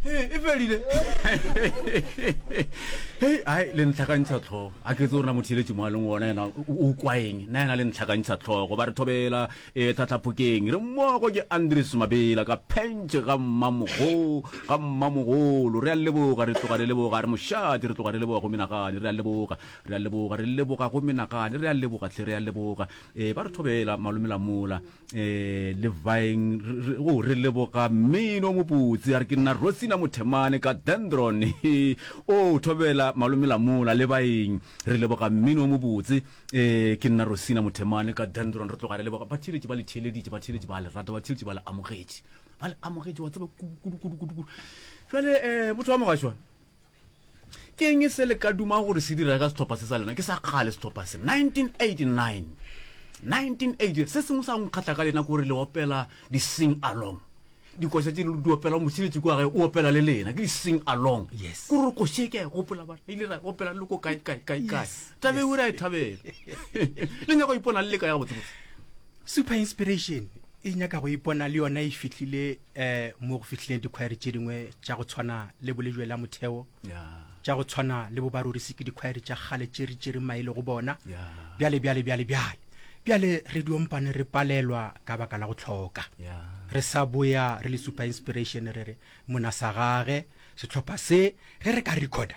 Hey, e felile hei ai le ntlhakantšha tlhogo a ke tse o rena motheletše mo a leng ona ena o kwaeng na ena le ntlhakantšha tlhogo ba re thobela e eh, tlatlhapokeng re mmogo ke andres mabela ka phentše ga mmamogo ga mmamogolo re a leboga re tloga re leboga re mošate re tloga re leboga go menagane re a leboga re a leboga re leboga go menagane re a leboga tlhe re a leboga um ba re thobela malomelamola Eh, Levaeng, re, o, oh, re leboga mmino mobotse. A re ke nna Rosina Mothemane ka Dendron. o oh, thobela malome lamola Levaeng. Re leboga mmino mobotse. Eh, ke nna Rosina Mothemane ka Dendron. Re tloga re leboga. Batheeletše ba le theeleditše, batheeletše ba le rata, batheeletše ba le amogetše. Ba le amogetše, wa tseba kudu, kudu, kudu, kudu. Jale, eh, motho wa mogashwa, Ke eng se le ka duma gore se direga setlhopha se sa lena? Ke sa kgale setlhopha se. 1989. 1980. Se sengwe sa go nkgatlha ka lena gore le opela di-sing along. Dikoša tse di opela mošiletši kwa gae o opela le lena. Ke di-sing along. Yes. Ko re koše ke a e gopola bana. Ile ra opela le ko kae kae kae kae. Tabe o re a e thabela. Le nyaka go ipona le le ka ya botsebotse. Super inspiration e nyaka go ipona le yona e fihlile eh mo go fihlileng dikhwaere tše dingwe tša go tshwana le bolejwe la motheo tša go tshwana le bobarorisi ke dikhwaere tša kgale tše re tšere maele go bona bjale bjale bjale bjale bjale re diompane re palelwa ka baka la go tlhoka re sa boya re le super inspiration re re mona sa gage setlhopha se ge re ka recorda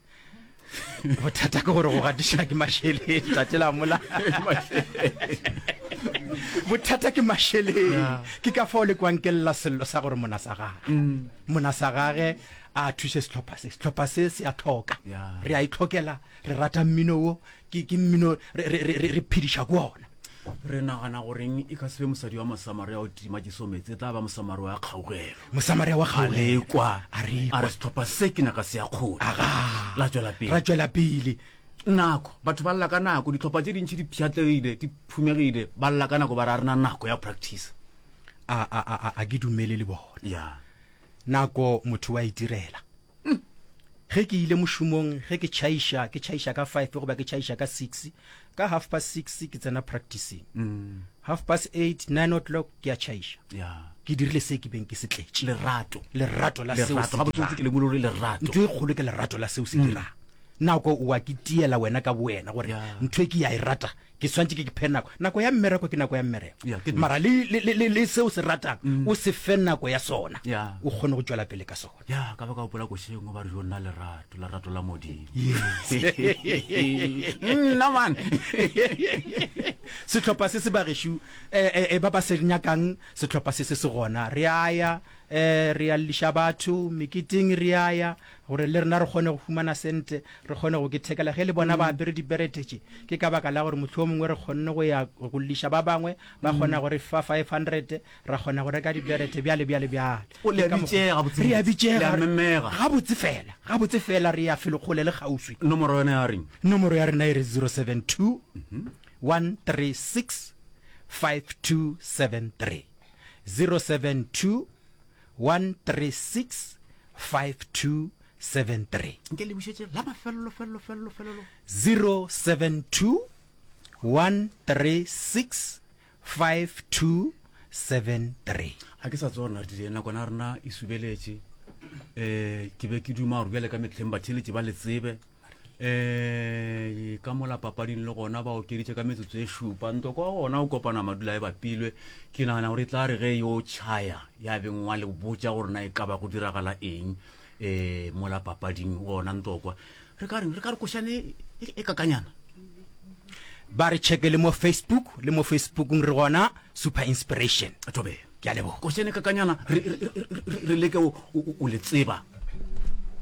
bothata ke gore go gatiša ke mašeleng tate la mola bothata ke mašeleng ah. ke ka fao le kwankelela sello sa gore mona sa gage mm. mona sa gage a thuse setlhopha se setlhopha se se a tlhoka re a itlhokela e re rata mmino wo ke ke mmino re- re- re- re- re phediša ko ona re nagana goreng e ka sebe mosadi wa mosamaria o tima jeso metse e tla ba mosamaria wa kgaogelo mosamaria wa kgaolelo alekwa A re a ekwa. re setlhopha se ke naka se ya kgona aga la tswela pele ra tšwela pele nako batho ba lla ka nako ditlhopha tse dintšhi di pšhatlegile di phumegile ba lla ka nako ba re a rena nako ya practice a a a a- a ke dumele le bona ya Nako motho wa itirela. Ge ke ile mošomong, ge ke tšhaiša, ke tšhaiša ka five goba ke tšhaiša ka six. Ka half past six ke tsena practicing. Half past eight, nine o'clock ke a tšhaiša. Yeah. Ke dirile se ke beng ke se tletše. Lerato. Lerato la seo Lerato. se Gabotsebotse ke dirang. lemogile gore lerato. Ntho e kgolo ke lerato la seo se dirang. Nako o a ke tiela wena ka bowena gore Yeah. ntho e ke ya e rata ke swantse ke ke phe nako nako ya mmereko ke nako ya mmereko yeah, mara le, le, le, le, le seo se ratang mm. o se fe nako ya sona yeah. o kgone go tšwela pele ka sona ya yeah, ka ba ka opola košeng o ba re jo nna lerato lerato la modimo nna man setlhopha se se bagešu eh, eh, eh, ba ba se nyakang setlhopha se se se gona re aya um re ya leliša batho meketing re aya Gore le rena re kgone go humana sentle, re kgone go kithekela ge le bona ba apere diberete tše, ke ka baka la gore mohlomongwe re kgonne go ya go lliša ba bangwe, ba kgona go re fa five hundred, ra kgona go reka diberete, bjale, bjale, bjale. O, le a bitšega gabotsebotse. Re a bitšega. Le a memega. Gabotse fela, gabotse fela, re ya felo kgole le kgauswi. Nomoro yona ya reng? Nomoro ya rena e re zero seven two, one three six, five two seven three, zero seven two, 1365273. Nke le bušetše la mafelelo felelo felelo felelo. 072 1365273. A ke sa tsona re dire nakwana rena e subeletše. Eh ke be ke duma gore bjale ka metlheng batheletše ba le tsebe. um ka mola papading le gona ba okeditše ka metsotso e šupa ntoko wa gona o kopana madula e bapilwe ke nagana gore e tla re ge yo chaya ya beng wa le botsa gore na e ka ba go diragala eng um mola papading gona ntokwa re ka reng re ka re košane e, e, e kakanyana ba re checke le mo facebook le mo facebookng re gona super inspiration tobe ke a leboga košane kakanyana re- re- re- re- re leke o- o o le tseba